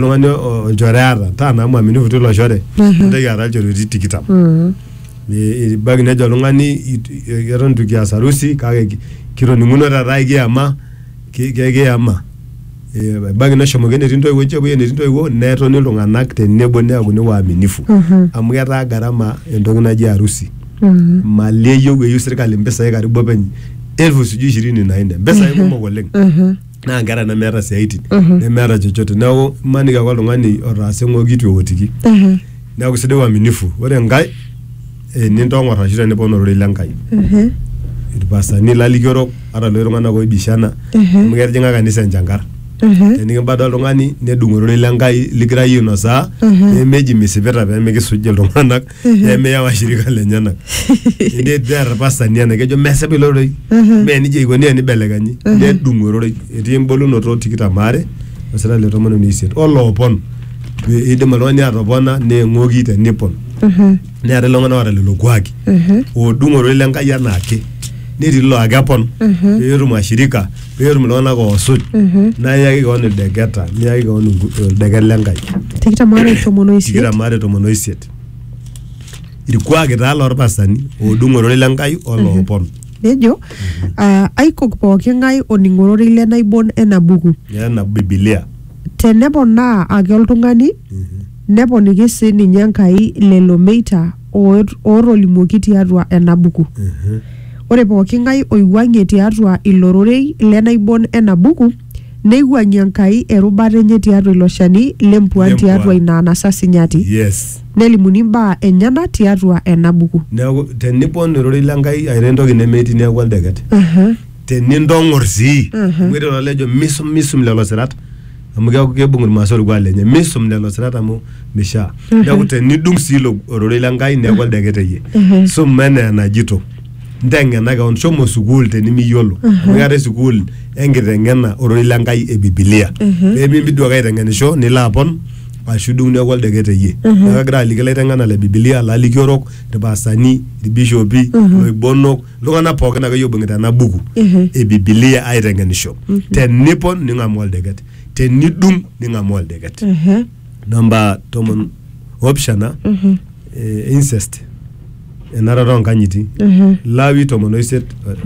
oltung'ani o- olchore aata taa naa mwaminifu tilo shore nintoki aata ilchoreti tikitam Ni- ibaiki nejo oltung'ani it- i- eton itu kias harusi kake ki- kitoning'uno taata ikiyama ki- ki- kiyama Eh, ebaiki neshomoki enetii intoiwuo enche epuoi enetii intoiwuo netoni iltung'anak tenebo neaku ne waaminifu amu ketaa gharama entoki naji harusi mali eyieu eyieu sirkali impisai karibu openy elfu sijui ishirini na nne mpisai kumok oleng naa nkera nemeeta siaitin nemeeta chochote neeku imaniki ake oltung'ani otaasa eng'oki itu eotiki neeku sidai uaminifu ore enkae eh, nintong'or ashu tenipon ororei lenkai irpastani lalikiorok ata loshi tung'anak oibishana amu ketijing'a kanisa enchankar tenikibada oltung'ani nedung ororei lenkai ligira iyie ainosaa nemeji misipita pemikisuj iltung'anak nemeya washirika lenyenak netii irpastani ena kejo mesipa ilo rorei mee nijia eikoni enibelekenyi nedung ororei etii embolunoto tikitam aare osira le tomon uni isiet oloopon pee eidim oltung'ani atopona neeng'oki tenipon neetae iltung'anak oota lelo kuaki oodung ororei le Nkai enaake netii laa kepon peetum ashirika peetum iltung'anak oosuj naa iyaki kewon ildeketa niyaki kewon ingu- ildeket le Nkai tikitam aare tomon o isiet tikitam aare tomon oisiet irkuaki taa lorpasani oodung ororei le Nkai oloopon nejo ah, aikok pooki ng'ae oning ororei le naibon ena buku nena bibilia teneponaa ake oltung'ani neponiki sii ninye Enkai lelo meita oot- ootolimuoki tiatua ena buku. Ore pooki ng'ae oiwuang'ie tiatua ilo rorei le naibon ena buku, neiwuang'ie Enkai erubata enye tiatua ilo shani le mpuaan Lempuaan. tiatua ina anasa sinyati, Yes. nelimuni imbaa enyena tiatua ena buku. Neaku tenipon ororei le Nkai airo entoki nemetii neaku oldeket. Aha. Tenintong'or sii, amu etii olojo misum misum lelo sirat. amu keaku keibung irmaasai orkuak lenye misum lelo sirat amu mishaa neaku tenidung sii ilo ororei le Nkai neaku oldeket eye suma enaa enajito nteng'ena kewon shomo sukuul tenimiyiolo amu keetae sukuul enkiteng'ena ororei le Nkai e bibilia pemimpi duo ake aiteng'enisho nilo apon ashu idung neaku oldeket eye neaku kagira aliki ilaiteng'enak le bibilia lalikiorok irpastani irbishopi iloibonok iltung'anak pookin akeyie oibung'ita ena buku e bibilia aiteng'enisho tenipon ning'amu oldeket tenidung ning'amu oldeket Ehe. namba tomon opishana eh, incest enarata onkanyiti Ehe. lawi tomon oisiet eh,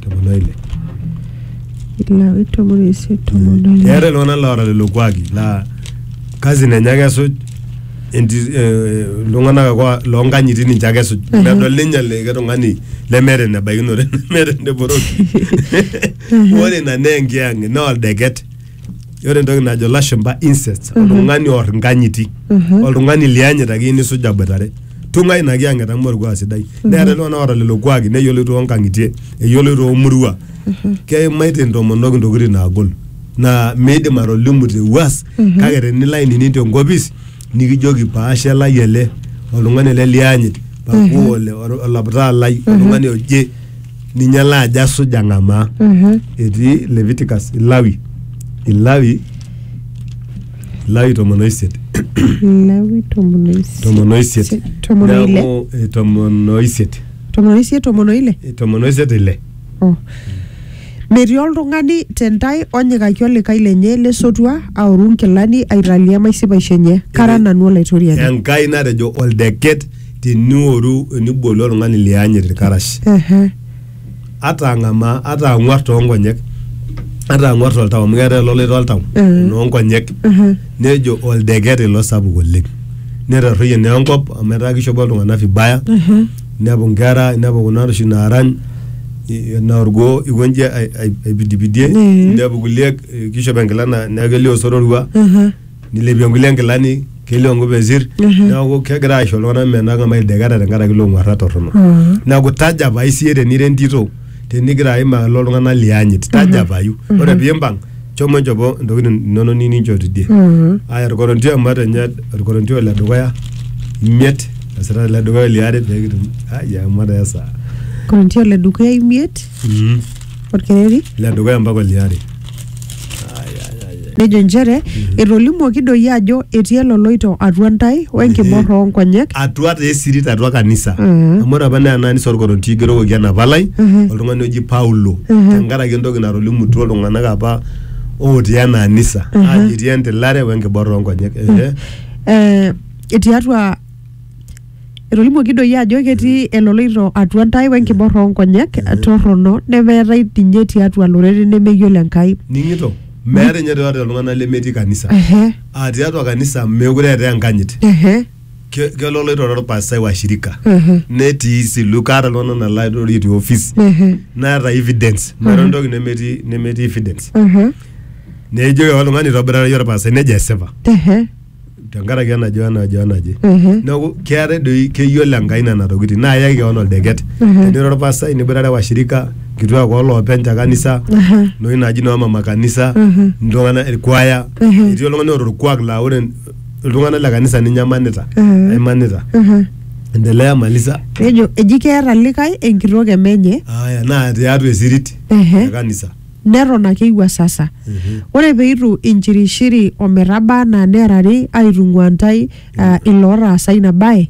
tomon oile Ilawi tomon oisiet tomon oile. eeta iltung'anak loora lelo kuaki laa kazi nenye ake esuj enti- eh, iltung'anak ake wa- loonkanyiti ninche ake esuj medol ninye likae tung'ani lemeeta enebaikinore nemeeta eneporoki ore ina naa enkiyang'et naa oldeket ore entoki najo lashumpa incest oltung'ani oor inkanyiti oltung'ani liyanyit ake iyieu nisuj aboitare tung'ai ina kiyang'et amu orkuak sidai neeta iltung'anak oota lelo kuaki neyioloi toonkang'itie eyioloi toomurua keimaitie intomonok intokitin naagol naa miidim atolimu te wuas kake tenilo ainining tenkopis nikijoki paashe lai ele oltung'ani ele lianyit pakuu ole ol- olaptaa lai oltung'ani oje ninye ele ajo asuj ang'amaa etii Leviticus Ilawi Ilawi Ilawi tomon oisiet Lawi tomon oisiet. tomon oisiet Tomon oile. Neaku, eh, tomon oisiet Tomon oisiet, tomon oile. Eh, tomon oisiet ile Oh. Metii oltung'ani te ntae onyikaki olikae lenye le sotua aoru nkilani aitalia maisipaisho enye. Kara nanu Olaitoriani. Enkai natejo oldeket tinioru enibolu oltung'ani lianyit ilkarash. Ehe. Ata ang'amaa, ata ang'uar too nkonyek, ata ang'uar toltau amu keetae ololoito oltau Mhm. noo nkonyek. Ehe. Nejo oldeket ilo sapuk oleng. Netarruoyie naa enkop amu etaa kishopo iltung'anak vibaya. Ehe. nepu nkera nepu kuna oshi naarany i- naa orgoo ikonji ai- ai- aipidipidie Mhm. nepu kulie eh, kishop enkila na- neeku kelio osororua Mhm. nilepie nkulie nkilani kelio nkupesir Mhm. neeku kegira aisho iltung'anak menang'a maideketa tenkaraki ilo ng'uarra torrono Mhm. neeku tajapai siye tenira entito tenigira aim alo iltung'anak liyanyit tajapayu ore piimpang shomo nchopo ntokitin inonok niyieu ninchoo tidie aya orkorontio amat enye orkorontio ole dukuya imiet esita ele dukuya oliare pekitum ai amat esaa Korinti ole dukuya imiet mm. orkereri ile dukuya mpaka oliare Ai, ai, ai, ai. nejo nchere etolimuoki doi ajo etii eloloito atua ntae wenkibor oonkonyek atua taa esirit atua kanisa Mhm. amu ore apa naa ena anisa orkorontio igerokoki ena palai Mhm. oltung'ani oji Paulo tenkaraki entoki natolimutuo iltung'anak apa otii ena anisa ajo etii entilare we enkiborra oonkonyek ehe eh, tiatua etolimuoki doi ajo ketii eloloito atua ntae wenkiborra oonkonyek torrono nemeetae ninye tiatua lorere nemeyiolo Enkai ning'ito meeta ninye tiatua iltung'anak lemetii kanisa ehe aa tiatua kanisa meekure eetae enkanyit ehe Ke- kelo oloitore orpastai wa shirika netii silu kaata iltung'anak nalaitorie te office naata evidence meeta entoki nemetii nemetii evidence nejoki oltung'ani itobirara iyie orpastai nejo esipa tenkaraki enajo enajo enaje neeku keetae doi keyiolo enkai nena tokitin naa iyaki kewon oldeket tenira orpastai niboitare washirika nkituak oloopeny te kanisa noshi naji noo mama kanisa iltung'anak irkuaya etii oltung'ani oota orkuak laa ore iltung'anak le kanisa ninye emanita Mhm. emanita Mhm. endelea malisa nejo eji keeta likae enkitok emenye aya naa tiatua esirit Ehe. e kanisa neton ake iwuasasa Mhm. ore peitu inchirishiri ometaba anaa neerari aitung'ua ntae uh, ilootaasa ina bae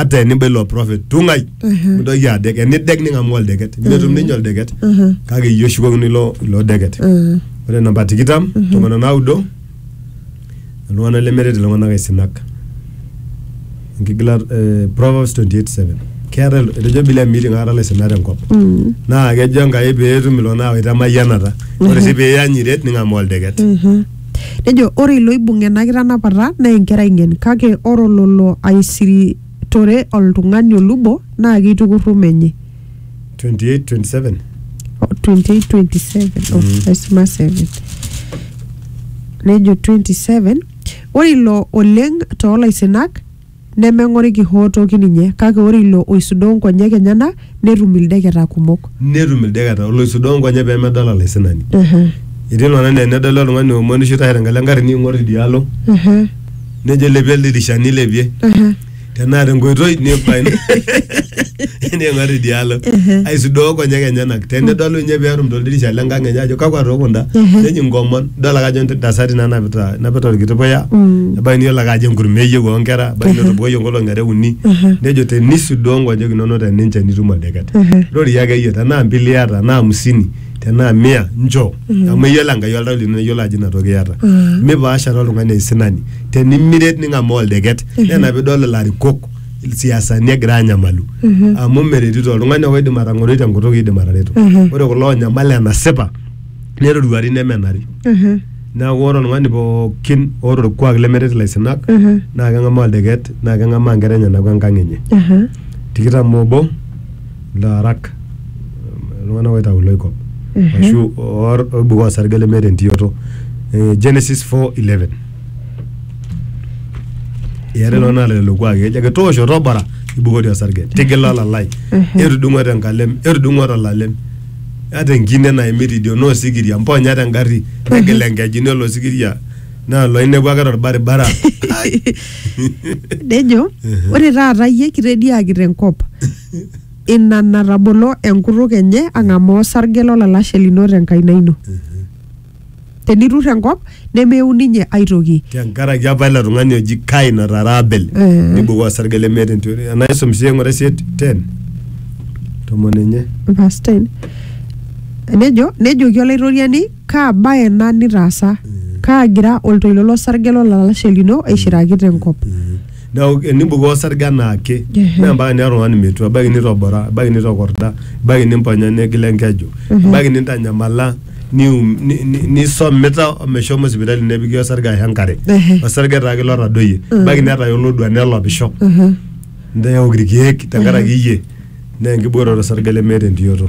ata eniba ilo prophet tung'ai mintoki adek enidek ning'amu oldeket netum ninye oldeket kake iyie oshukokino ilo ilo deket ore namba tikitam tomon onaudo iltung'anak lemeret iltung'anak aisinak enkigilata eh, Proverbs 28:7 keeta il- etejo Biblia meeting aikata ilaisinak tenkop naa kejo Enkai peetum iltung'anak awaita emayianata ore sii piiyanyiret ning'amu oldeket Nejo, Ore ilo oibung ena kitanapata naa enkerai ng'en, kake ore ololo aisiritore oltung'ani olubo naa keitukurru menye. 28:27. 28:27 oh, Mm. aisuma 7 nejo 27 ore ilo oleng toolaisinak Nemeng'oriki hoo toki ninye, kake ore ilo oisudoo nkonyek enyena netum ildeketa kumok. Netum ildeketa oloisudoo nkonyek pee medol olaisinani. Etii iltung'ana naa enedol oltung'ani oomonisho oitashe tenkalo engarri neing'or idia alo nejo ilepie oldirisha neilepie tenaa tenkoitoi neibayu. ning'or idialo aisudoo konyek enyenak tenedolu ninye peetum toldirisha lenkang enye ajo kakwa too kunda neji nkomon idol ake ajo ntasati nanapita napita orkiti puya ebaiki niyiolo ake ajo enkurma eyieu onkera ebaiki netobokoyie nkolong'i are uni nejo tenisudoo nkonyek inonok teninche nitum oldeket rorie ake iyie tenaa mbili iyata tenaa amisini tenaa mia nchoo amu eyiolo Enkai oltau lino neyiolo ajo ina toki iyata mipaashare oltung'ani aisinani tenimiret ning'amaa oldeket naa ina piidol ilarikok siasani egira anyamalu amu meretito oltung'ani oidim atang'oroi tenkutuk iidim atareto ore kulo onyamal enasipa neroruari nemenari neeku ore oltung'ani pookin oota orkuak lemeret ilaisinak naa keng'amaa oldeket naa keng'amaa inkera enyenak wenkang enye tikitam obo ilaarak iltung'anak oitau iloikop ashu oibukoo osarge lemeeta entiyoto Eh, Genesis 4:11 Eare loo naata lelo kuaaki ejo ake toosho tobora ibukori osarge tigila olalai etudung'o tenkalem etudung'o tolalem ata enkine naimi tidio naa osikiria mponya tengarri negila enkeju nelo osikiria naa loinepu ake torbaribara nejo ore taata iyie kitediaki tenkop ina natabolo enkutuk enye ang'amaa osarge lolalashe lino tenkaina ino tenitur enkop nemeun ninye aitoki tenkaraki apa ilo tung'ani oji kain otaara abel Eh. nibukoo osarge lemeeta entoki enaa isum sii eng'ura isiet ten tomon enye verse 10 nejo nejoki olaitoriani kaa baye ena nitaasa kaagira oltoilo losarge lolalashe lino aishiraki tenkop neeku enibukoo osarge anaake Ehe. naa mpaka naa oltung'ani metua ebaiki nitobora ebaiki nitokorda ebaiki nimponya negila enkeju ebaiki nintanyamala nium- ni- ni- nisomita omeshomo sipitali nepiki osarge ashu enkare Ehe. osarge taake ilo otadoyie ebaiki netaya olodua nelopisho ntae eok irkeek tenkaraki iyie naa enkibooroto osarge lemeeta entioto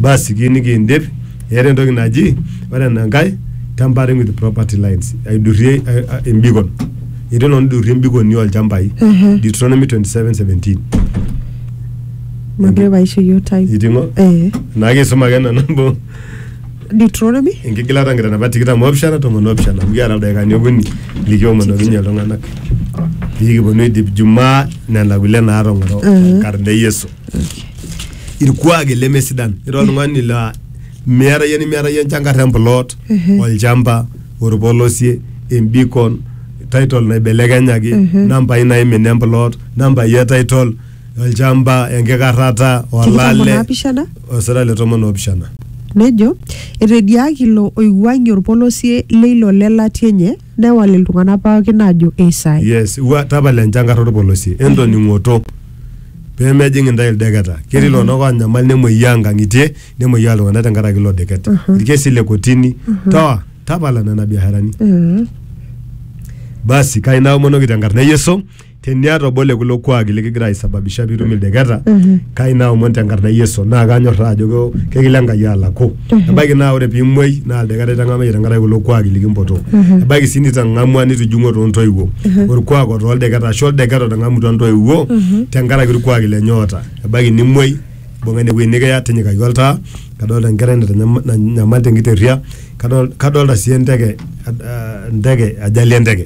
basi kiyieu nikiindip eeta entoki naji ore enankae tampering with property lines aidurie eh, eh, embikon etii oltung'ani oidurie embikoni olchambai Deuteronomy 27:17 Mokure paisho yiok time. iting'o Eh. naake isuma ake nanu amu Deuteronomy enkigilata nkitanapat tikitam oopishana tomon oopishana amu kiata ildaikani okuni likiomonokinye iltung'anak pikiponu aidip jumaa nena kulie naatong'oro tenkarna e yesu irkuaki lemesidan ira oltung'ani laa miata yie nimiata yie enchankarr emplot olchamba orpolosie embikon title naibelekenyaki nambai naimina emplot nambai e title olchamba enkikarrata Tikitam olale onaapishana. osira le tomon oopishana Nejo, etediaaki ilo oiwuang'ie olpolosie leilo le latia enye, newal iltung'ana pookin aajo eisai. yes wa tapala enchankar olpolosie entoning'oto pee mejing intae ildeketa ketii iltung'anak oonyamal nemuoyaa inkang'itie nemuoyaa iltung'anak tenkaraki ilo deket ilkesi le kotini toa tapala nena biasharani Mhm. basi kai naomonoki tenkarna e Yesu teniata obo le kulo kuaaki likigira aisababisha piitum ildeketa kai naomon tenkarna e Yesu naa kanyorraa ajo keo- kekilo Enkai alaku ebaiki naa ore piimuoi naa ildeketa itang'amayie tenkaraki kulo kuaaki likimpotoo ebaiki sii nitang'amua nitijing'ua toontoiwuo orkuak otaa oldeketa ashu oldeketa otang'amutua intoiwuo tenkaraki irkuaaki lenye oota ebaiki nimuoi imbung'a ine wueji nikiya tinyikaki oltaa kadolta enkerai natanyama- nanyamal tenkiterria kadol- kadolta sii enteke ah, enteke ajali enteke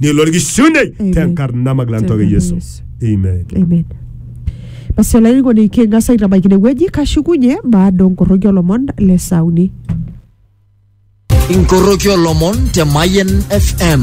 ni lor gi shunde Amen. ten kar nama glan toge Tenkarna yesu Yesu. amen Amen. Basi olainining'oni king'as aitabaiki ine wueji kashukunye baada onkoroki olomon le sauni. inkoroki olomon te Mayen FM.